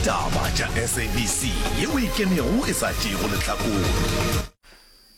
Taba tša SABC ye o e kenego e sa tšeego lehlakore.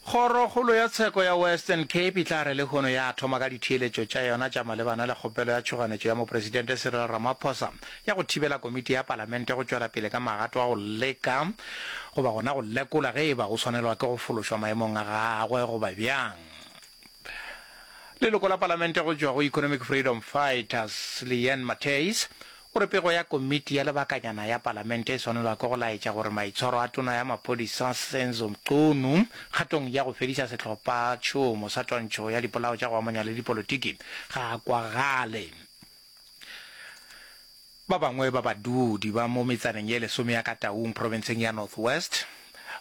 Kgorokgolo ya tsheko ya Western Cape e tla re lehono ya thoma ka ditheeletšo tša yona tša malebana le kgopelo ya tšhoganetšo ya Mopresidente Cyril Ramaphosa ya go thibela komiti ya Palamente go tšwela pele ka magato a go leka goba gona go lekola ge e ba o swanelwa ke go fološwa maemong a gagwe goba bjang. Leloko la Palamente go tšwa go Economic Freedom Fighters, Leanne Matthys, O re pego ya komiti ya lebakanyana ya palamente e swanelwa ke go laetša gore maitshwaro a tona ya maphodisa Senzo Mchunu kgatong ya go fediša sehlopha tšhomo sa twantšho ya dipolao tša go amanya le dipolotiki ga a kwagale. Ba bangwe ba badudi ba mo metsaneng ye lesome ya ka Taung profenseng ya North West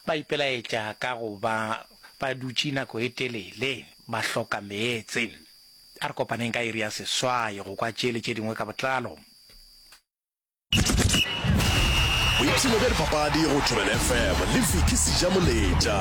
ba ipelaetša ka go ba ba dutše nako e telele ba hloka meetse. A re kopaneng ka iri ya seswai go kwa tše le tše dingwe ka botlalo. Boipshino bja dipapadi go Thobela FM le Vicky Sijamoletša.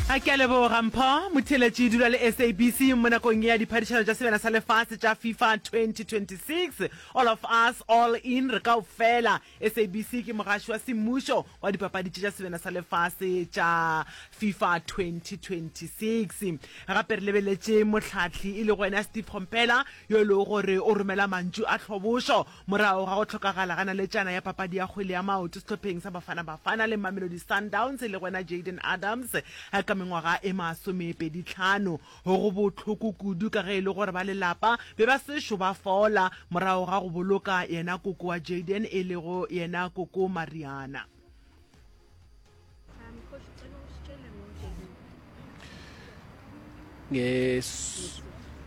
A ke a leboga Mpho Motheletši dula le SABC mo nakong ya diphadišano tša sebjana sa lefase tša FIFA 2026 All of us all in re kaofela SABC ke mogaši wa semmušo wa dipapadi tša sebena sa lefase tša FIFA 2026. Gape re lebeletše mohlahli e lego ena Steve Komphela yo e lego gore o romela mantšu a tlhobošo morago ga go hlokagala ga naletšana ya papadi ya kgwele ya maoto sehlopheng sa Bafana Bafana le Mamelodi Sundowns e lego ena Jayden Adams ka mengwaga e masomepedi tlhano. Go go bohloko kudu ka ge e le gore ba lelapa be ba sešo ba fola morago ga go boloka yena koko wa Jayden e lego yena koko Mariana.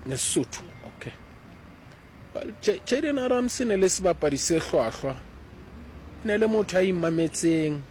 Ngesotho okay. Jayden Arams e ne le sebapadi se hlwahlwa, e ne le motho a imametseng.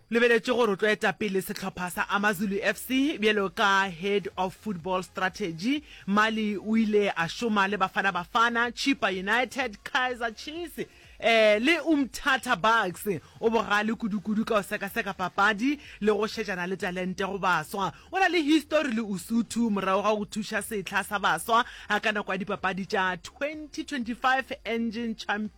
Lebeletše gore o tlo eta pele sehlopha sa AmaZulu FC bjalo ka Head of Football Strategy. Mali o ile a šoma le Bafana Bafana, Chippa United, Kaizer Chiefs eh le Umtata Bucks. O bogale kudu-kudu ka go sekaseka papadi le go šetšana le talente go baswa. O na le histori le Usuthu morago ga go thuša sehla sa baswa ka nako ya dipapadi tša 2025 Engen Champions.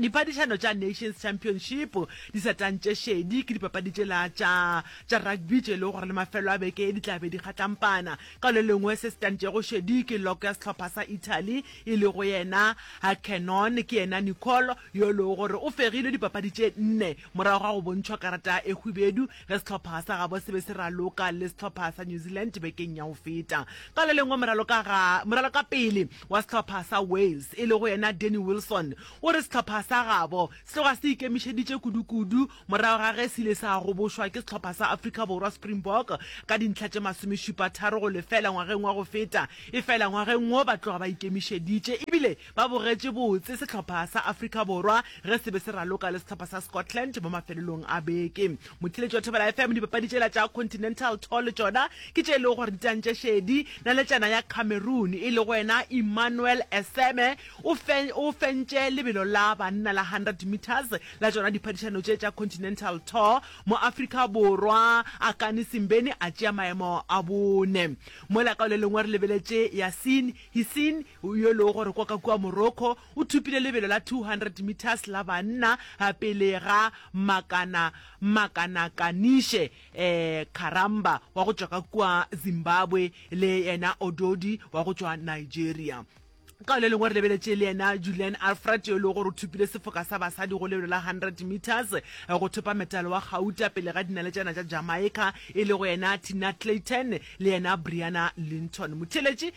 Diphadišano tša Nations Championship di sa tantše šedi ke dipapadi tšela tša tša rugby tše e lego gore le mafelo a beke ye di tla be di kgatlampana. Ka le lengwe se se tantšego šedi ke log ya sehlopha sa Italy e lego yena Hakenon, ke yena Nicole yo e lego gore o fegilwe dipapadi tše nne morago ga go bontšhwa karata e hwibedu ge sehlopha sa gabo se be se raloka le sehlopha sa New Zealand bekeng ya go feta. Ka le lengwe moralokapele wa sehlopha sa Wales e lego yena Danny Wilson o re sehlopha sa gabo se tloga se ikemišeditše kudukudu morago ga ge se ile sa gobošwa ke sehlopha sa Afrika Borwa Springbok ka dintlha tše masomešupa tharo go lefela ngwageng wa go feta efela ngwageng wo ba tloga ba ikemišeditše ebile ba bogetše botse sehlopha sa Afrika Borwa ge se be se raloka le sehlopha sa Scotland mo mafelelong a beke Mothiletši wa Thobela FM, dipapadi tšela tša Continental Tour le tšona ke tše e lego gore di tantše šedi. Naletšana ya Cameroon e lego yena Emmanuel Eseme o fe, o fentše lebelo la banna la 100 metres la tšona diphadišano tše tša Continental Tour. Mo Afrika Borwa, Akani Simbeni a tšea maemo a bone. Mola ka o le lengwe re lebeletše Yassine Hissine yo e lego gore kwa ka kua Morocco O thopile lebelo la 200 metres la banna pele ga Makana Makana Kanishe Karamba wa go tšwa ka kua Zimbabwe le yena Ododi wa go tšwa Nigeria. Ka le lengwe re lebeletše le yena Julian Alfred yo e lego gore o thopile sefoka sa basadi go lebelo la 100 metres go thopa metalo wa gauta pele ga dinaletšana tša Jamaica e lego yena Tina Clayton le yena Brianna Linton. Motheeletši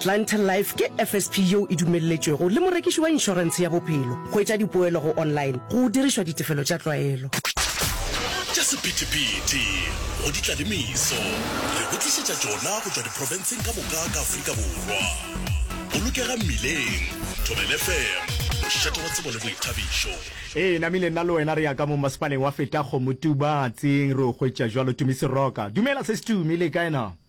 Clientele Life ke FSP yeo e dumelletšwego le morekiši wa inšorentshe ya bophelo go etša dipoelo go online go dirišwa ditefelo tša tlwaelo. Tša sephethephethe go di tla le meso, re go tlišetša tšona go tšwa diprofenseng ka moka ka Afrika Borwa. Bolokega mmileng, Thobel FM, mošate wa tsebo le boithabišo. Ee, namile nna le wena re ya ka mo masepaleng wa feta Kgomotuba, Tsing, re o hwetša jwalo Tumi Seroka. Dumela sesi Tumi, le kae na?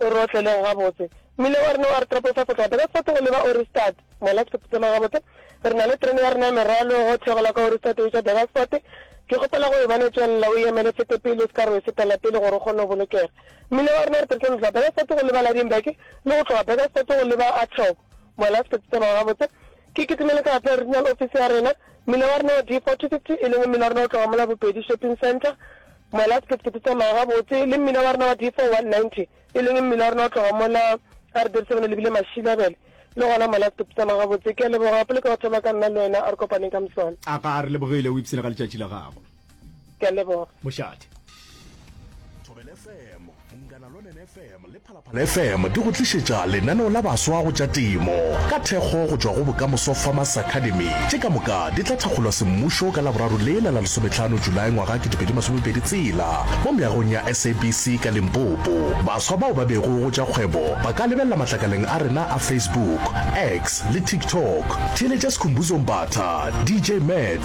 O re otleleng gabotse. Mmila wa rena wa re topofa segape ka sefate go leba Ohrigstad. Mola ke sephuthama gabotse. Re na le terene ya rena ya merwalo go theogela kwa Ohrigstad go iša Degerford. Ke kgopela go e bona e tšwelela. O e emele e fete pele, o se ka re o e setela pele gore o kgone go bolokega. Mmila wa rena re tletše go tloga Begersfort go leba Ladinburg le go tloga Begersfort go leba Athlob. Mola ke sephuthama gabotse. Ke kitimele ka gape regional office ya rena. Mmila wa rena wa D4 250, e leng mmila wa rena o tloga mola Bopedi Shopping Centre. Mola se ke se ke se tsamaya gabotse le mmila wa rena wa D4 190, e leng mmila wa rena wa tloga mola a re dirisebana lebile Mashilabele. Le gona mola se ke se tsamaya gabotse. Ke a leboga gape le ka go thoma ka nna le wena a re kopaneng ka moswane. A ga a re lebogele o ipsene ga letšatši la gago. Ke a leboga. Mošate. Thobelefm. fm di go tlišetša lenaneo la baswa go tša temo ka thekgo go tšwa go bokamoso farmers academy tše ka moka di tla thakgolwa semmušo ka laboraro lela la lesometlhano julae ngwaga 2020 tsela mo meagong ya sabc ka limpopo baswa bao ba bego go tša kgwebo ba ka lebelela matlakaleng a rena a facebook x le tiktok theeletša sekhumbuzong batha dj mat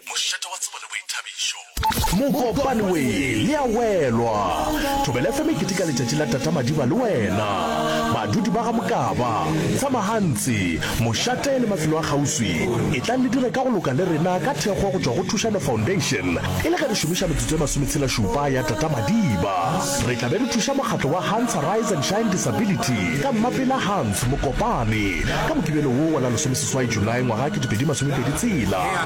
Mošate wa tsebo le boithabišo. Mokopane we le ya welwa. Thobela FM e keteka letšatši la Tata Madiba le wena. Badudi ba ga Mokaba, Tsamahantsi, Mošate le mafelo a kgauswi etlang le dire ka go loka le rena ka thekgo go tšwa go Thušano Foundation e le ge re šomiša metsotso e masometshelašupa ya Tata Madiba. Re tla be re thuša mokgatlo wa Hans Arise and Shine Disability ka Mmapela Hans Mokopane ka Mokibelo wo wa la lesomeseswai Julae ngwaga kete pedi masomepedi tshela.